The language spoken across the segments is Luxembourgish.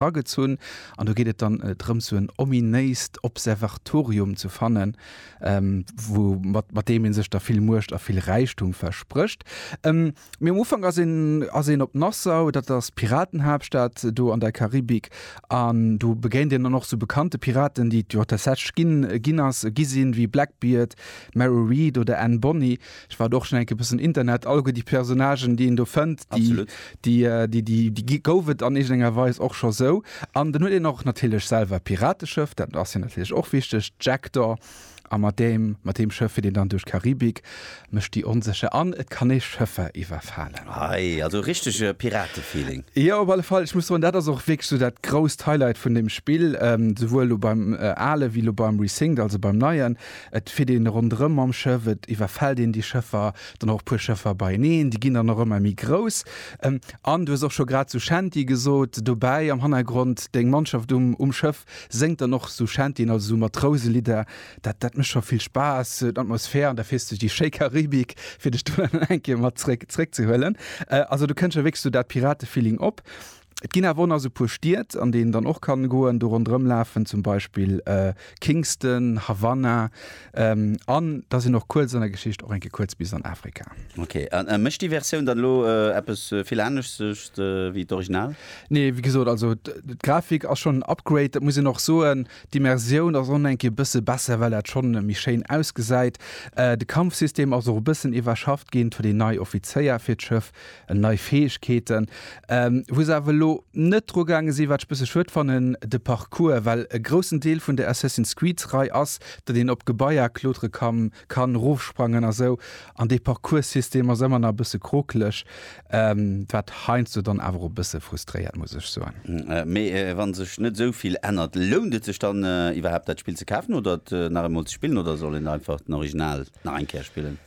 agezunn an do geet et dann drëms sou en ominéist Observatorium ze fannen, wou mat mat deem een sech da vill Muecht a vill Räichtum versprécht. Mee um Ufank ass een ass een op Nassau, dat ass d'Piratenhaaptstad do an der Karibik an do begéint een dann och sou bekannte Piraten, déi et jo tatsächlech ginn ginn ass gi sinn, wéi Blackbeard, Mary Read oder Anne Bonny. Ech war do och schon enke bessen Internet, alleguer déi Personnagen déi een do fënnt, déi gouf et an iergendenger Weis och scho sou. An dann huet een och natierlech selwer e Pirateschëff, dat ass jo natierlech och wichteg, d'Jackdaw, a mat deem, mat deem Schëff fiert een dann duerch d'Karibik, mécht déi onsécher an et kann ee Schëffer iwwerfalen. Hei, also richtege Piratefeeling. Jo, op alle Fall. Ech muss soen, dat ass och wierklech sou dat grousst Highlight vun deem Spill, souwuel elo beim ale wéi elo beim Resync, also beim neien. Et fiert een ronderëm mam Schëff, et iwwerfält een déi Schëffer, dann och e puer Schëffer beieneen, déi ginn dann och ëmmer méi grouss. An du hues och scho grad Suchenti gesot, dobäi am Hannergrond, deng Mannschaft um um Schëff séngt dann och Suchentien, also esou Matrouse-Lidder. Dat dat mécht scho vill Spaass, d'Atmosphär, an da fiers du déi schéi Karibik, fir dech do dann eng Kéier mat zréck zréckzehuelen. Also do kënnt scho wierklech esou dat Pirate-Feeling op. Et ginn awer och nach esou e puer Stied, an déi een dann och kann goen, do ronderëm lafen, zum Beispill Kingston, Havanna, an da sinn och kuerz an der Geschicht och eng Kéier kuerz bis an Afrika. Ok, an mécht déi Versioun dann elo eppes vill aneschters wéi d'Original? Nee, wéi gesot, also d'Grafik ass schonn en Upgrade, dat muss een och soen. D'Immersioun ass och nach eng Kéier e bësse besser, well dat schonn méi schéin ausgesäit. De Kampfsystem ass och e bëssen iwwerschafft ginn, et huet een nei Offizéier fir d'Schëff, en nei Fäegkeeten, wou se awer elo net dru gaange sinn, wat ech e bësse schued fannen, de Parcours, well e groussen Deel vun der Assassin's Creed-Rei ass, datt een op Gebaier klotere kann, erofsprangen a sou, an dee Parcourssystem ass ëmmer nach e bësse krokeleg, wat heiansdo dann awer och e bësse frustréiert, muss ech soen. Mee wa sech net esou vill ännert, lount et sech dann iwwerhaapt, dat Spill ze kafen oder et nach eemol ze spillen, oder soll een einfach den Original nach eng Kéier spillen?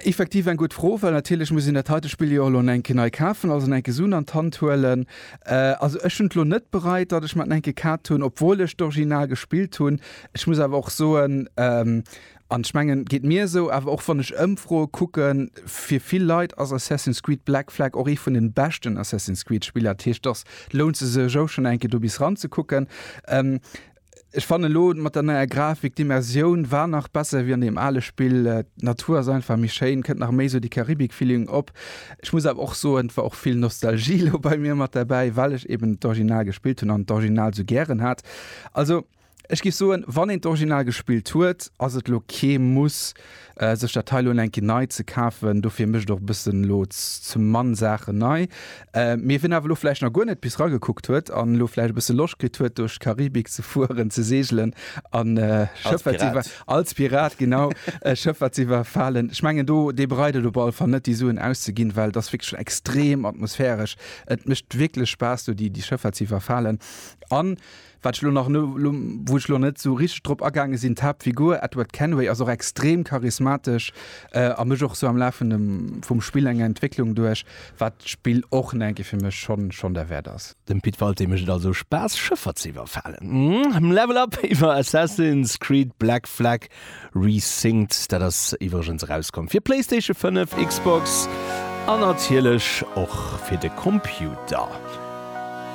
Effektiv eng gutt Fro, well natierlech muss een dat heite Spill jo och elo enke nei kafen, also en enke Sun an d'Hand huelen. Also ech hunn et elo net bereit, datt ech mer en enke kaft hunn, obwuel ech d'Original gespillt hunn. Ech muss awer och soen, an ech mengen geet mir esou, awer och wann ech Ëmfroe kucken, fir vill Leit ass Assassin's Creed Black Flag och ee vun de beschten Assassin's Creed Spiller. Dat heescht, datt lount se sech ou schonn enke do bis ran ze kucken. Ech fannen elo mat der neier Grafik, d'Immersioun war nach besser wéi an deem ale Spill. D'Natur ass einfach méi schéin, kënnt nach méi esou dee Karibik-Feeling op. Ech muss awer och soen, et war och vill Nostalgie elo bei mir mat derbäi, well ech eben d'Original gespillt hunn an d'Original esou gären hat. Also ech géif soen, wann een d'Original gespillt huet, ass et elo kee Muss, sech dat hei lo eng Kéier nei ze kafen. Dofir mécht och e bëssen elo zum Mann Saachen nei. Mee wien awer elo vläicht nach guer net bis ragekuckt huet an elo vläicht e bësse Loscht kritt huet duerch d'Karibik ze fueren, ze seegelen an Schëffer ze iwwer. Als Pirat. Als Pirat, genau. Schëffer ze iwwerfalen, ech mengen do, dee bereit et op alle Fall net déi Suen auszeginn, well et ass wierklech extrem atmosphäresch. Et mécht wierklech Spaass do déi Schëffer ze iwwerfalen an. Wat ech lo nach, wou ech lo net esou richteg drop agaange sinn, d'Haaptfigur Edward Kenway ass och extrem charismatesch a mécht och esou am Laf vum Spill eng Entwécklung duerch, wat d'Spill och en enke fir mech schonn schonn derwäert ass. Dem Pit Walté mécht et also Spaass Schëffer ze iwwerfalen. Hm, Level Up iwwer Assassin's Creed Black Flag Resynced, dat ass iwwregens erauskomm fir PlayStation 5, Xbox an natierlech och fir de Computer.